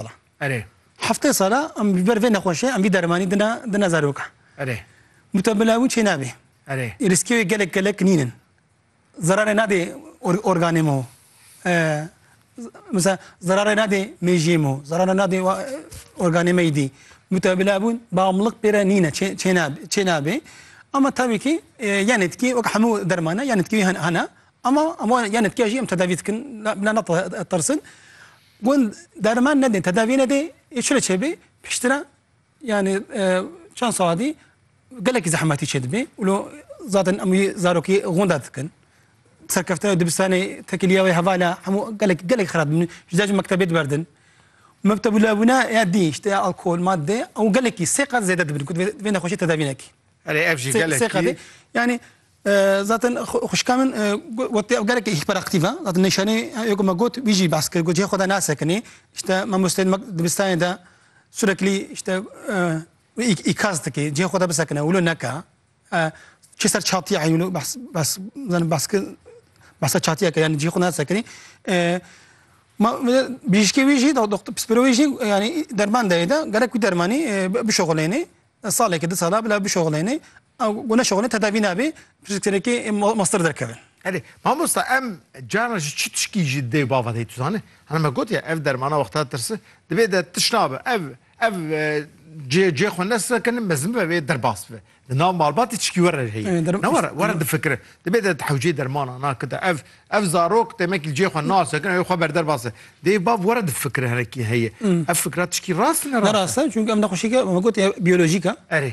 sala. Erê. Heftê sala em li ber vê nexweşê em vî dermanî dina dina zarokan. Erê. Mutemela wî çê nabê. Erê. Rîskê wê gelek gelek nîn in. Zerarê nadê organê me. Misa zerarê nadê mêjiyê me, zerarê nadê organê me dî. Mutemela bûn bamlik pê re nîne çê nabê. Ama tabii ki e, yan etkî wek hemû dermana yan etkî hene ama ama yan etkîya jî em tedavî dikin bila netirsin. Gund derman nedê, tedavî nedê, ê çi re çêbê? Piştre yanî çend saadî gelekî zehmetî çêdibê û lo zaten em wî zarokî gunda dikin. Serkeftina dibistanê tekiliya wê hevala hemû gelek gelek xirab dibin. Ji dacî mektebê diberdin. Mektebûla bûna ya dî işte ya alkol, madde ew gelekî sê qat zêde dibin ku vê nexweşî tedavî nekî. Erê ev jî gelekî. Yani Zaten xwişka min got ev gelekî hîperactîv e. Zaten nîşanî ya ku me got wî jî behs kir. Got cihê xwe de nasekinî. Îşte mamosteyên me dibistanê de sureklî îşte îkaz dike. Cihê xwe de bisekine wilo neke. Çi ser çatiya heye wilo behs behs zanin behs kir behsa çatiya kir yanî cihê xwe nasekinî. Ma bijîşkê wî jî pispirê wî jî yanî derman dayê de gerek wî dermanî bişoxilênê. Saleke di sala bila bişoxilênê. Ew ku neşixwîne tedavî nabe, pişt tenekê master derkeve. Erê, mamosta em carna ji çi tişkî jî dê bava dê tu zanî? Hana me gotiye ev dermana wexta tirsi divê de tiş nabe. Ev ev cê cê xwe nesekine mezin bibe vê derbas bibe. Di nav malbatê tişkî were re heye. Ne were were difikire. Divê de di hewceyê dermanan a kite. Ev ev zarok demekî li cê xwe nasekine wê xwe berderbas e. Dê bav were difikire hinekî heye. Ev fikra tişkî rast ne rast e? Ne rast e çünkü ev nexweşîke me gotiye biyolojîk e. Erê.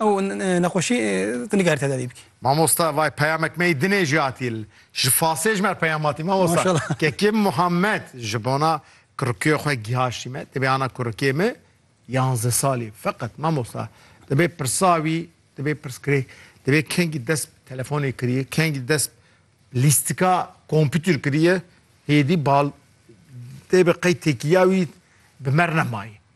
Ew nexweşî tu nikare tedavî bikî. Mamosta vay peyamek mey dinê jî hatî li ji fasê ji me re peyam hatî mamosta kekê Muhammed ji bona kurikê xwe gihaştî me tibê ana kurikê min yanzdeh salî feqet mamosta tibê pirsa wî tibê pirskirê tibê kengî dest bi telefonê kiriye kengî dest lîstika kompîtîr kiriye hêdî bal tê bi qey têkîya wî bi mer nemayî.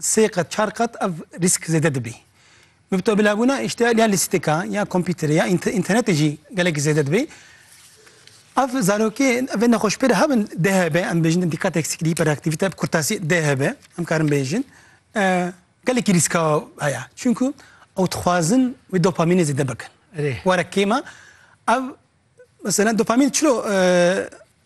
Sê qat, çar qat ev rîsk zêde dibî. Mubtebelabûna îştihal ya lîstika ya kompîterê ya înternetê jî gelek zêde dibî. Ev zarokê evê nexweşpêre hebin DHB em bêjin dîqat eksikî, hiperaktivîte, kurtasî DHB em karin bêjin gelekî rîska heye. Çunku ew dixwazin wê dopamînê zêde bikin. Were kêma ev mesela dopamîn çilo